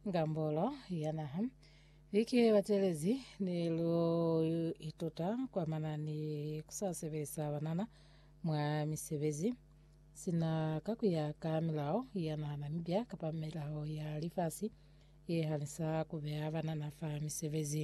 Ngambolo ya naha Viki ye batelezi ni lu ituta kwa manani ku sa sebelisa banana mwa misebezi sina ka ku ya ka milao ya naha Namibia kapa milao ya lifasi ye hanisa ku beya banana fa misebezi.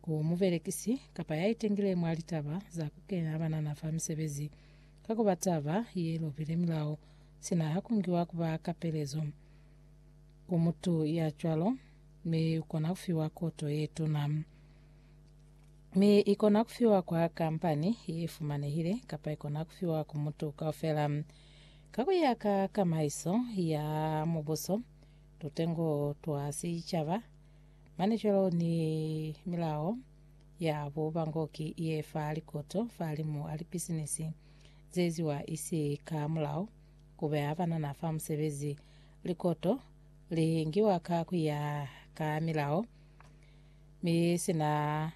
Ku mubelekisi kapa ya itengile mwa litaba za ku kena banana fa misebezi ka ku ba taba ye lobile milao, sina ha ku ngiwa ku ba kapelezo ku mutu ya cwalo, mi u kona ku fiwa koto ye tuna. Mi i kona ku fiwa kwa kampani ye fumanehile kapa i kona ku fiwa ku mutu kaufela. Ka ku ya ka kamaiso ya mubuso, tutengo twa sicaba Mane cwalo ni milao ya bu bangoki ye fa likoto falimu a lipisinisi zeeziwa isi ka mulao, kubeha banana fa musebezi. Likoto li ngiwa ka kuya ka milao, mi sina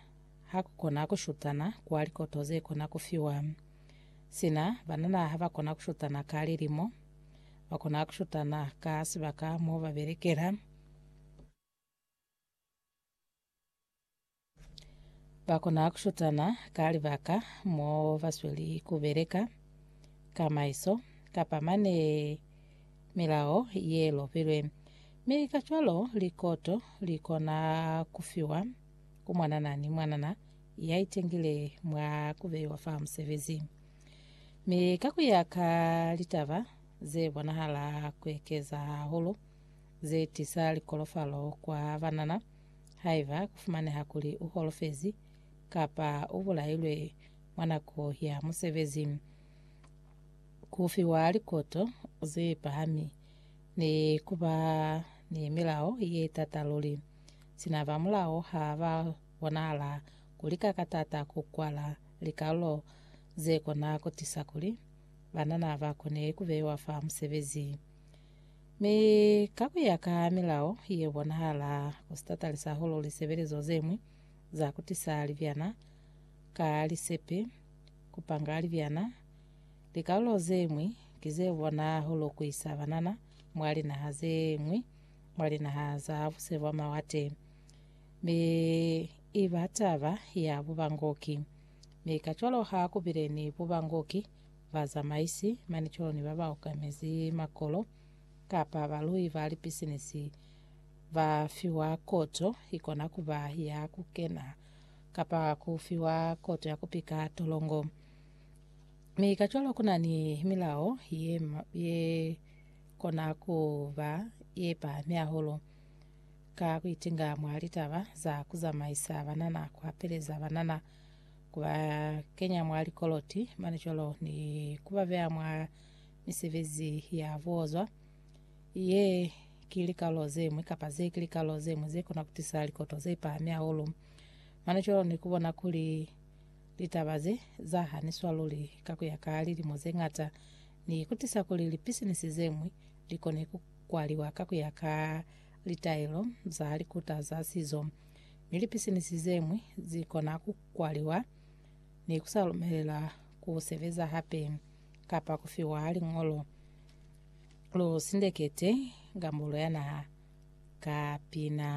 hakukona kushutana kwa likoto zekona kufiwa. Sina banana habakona kushutana ka lilimo, bakona kushutana ka sibaka mo babelekela. Ba kona ku shutana ka libaka mo ba sweli ku beleka ka maiso kapa mane milao ye lopilwe. Mi kacwalo likoto li kona ku fiwa ku mwanana ni mwanana ya itengile mwa ku beiwa fa musebezi. Mi ka ku ya ka litaba ze bonahala ku ekeza hahulu, ze tisa likolofalo kwa banana, haiba ku fumaneha kuli u holofezi kapa u bulailwe mwa nako ya musebezi, ku fiwa likoto ze pahami, ni ku ba ni milao ye t'ata luli. Sina ba mulao ha ba bonahala ku lika ka t'ata ku kwala likalulo ze kona ku tisa kuli banana ba kone ku beiwa fa musebezi. Mi ka ku ya ka milao ye bonahala ku si tatalisa hahulu lisebelezo ze ñwi za ku tisa libyana ka lisepe, ku panga libyana, likalulo ze ñwi ki ze bona hahulu ku isa banana mwa linaha ze ñwi, mwa linaha za buse bwa mawate. Mi i ba taba ya bubangoki. Mi kacwalo ha ku bile ni bubangoki bazamaisi, manicolo ni babaokamezi makolo, kapa balui ba lipisinisi ba fiwa koto ikona kuba ya kukena kapa ku fiwa koto ya kupika tolongo. Mi kacwalo kuna ni milao ye, ye kona kuba ye pahami hahulu ka kuitinga mwa litaba za kuzamaisa banana, kuhapeleza banana, ku ba kenya mwa likoloti mane cwalo ni ku ba beya mwa misebezi ya buozwa ye ki likalo ze ñwi kapa ze ki likalo ze ñwi ze kona ku tisa likoto ze pahami hahulu mane cwalo ni ku bona kuli litaba ze za haniswa luli ka ku ya ka lilimo ze ngata ni ku tisa kuli lipisinisi ze ñwi li kone ku kwaliwa ka ku ya ka litaelo za likuta za sizo mi lipisinisi ze ñwi zi kona ku kwaliwa ni ku sa lumelelwa ku sebeza hape kapa ku fiwa liñolo lu sindekete Gambolo ya Naha ka pina.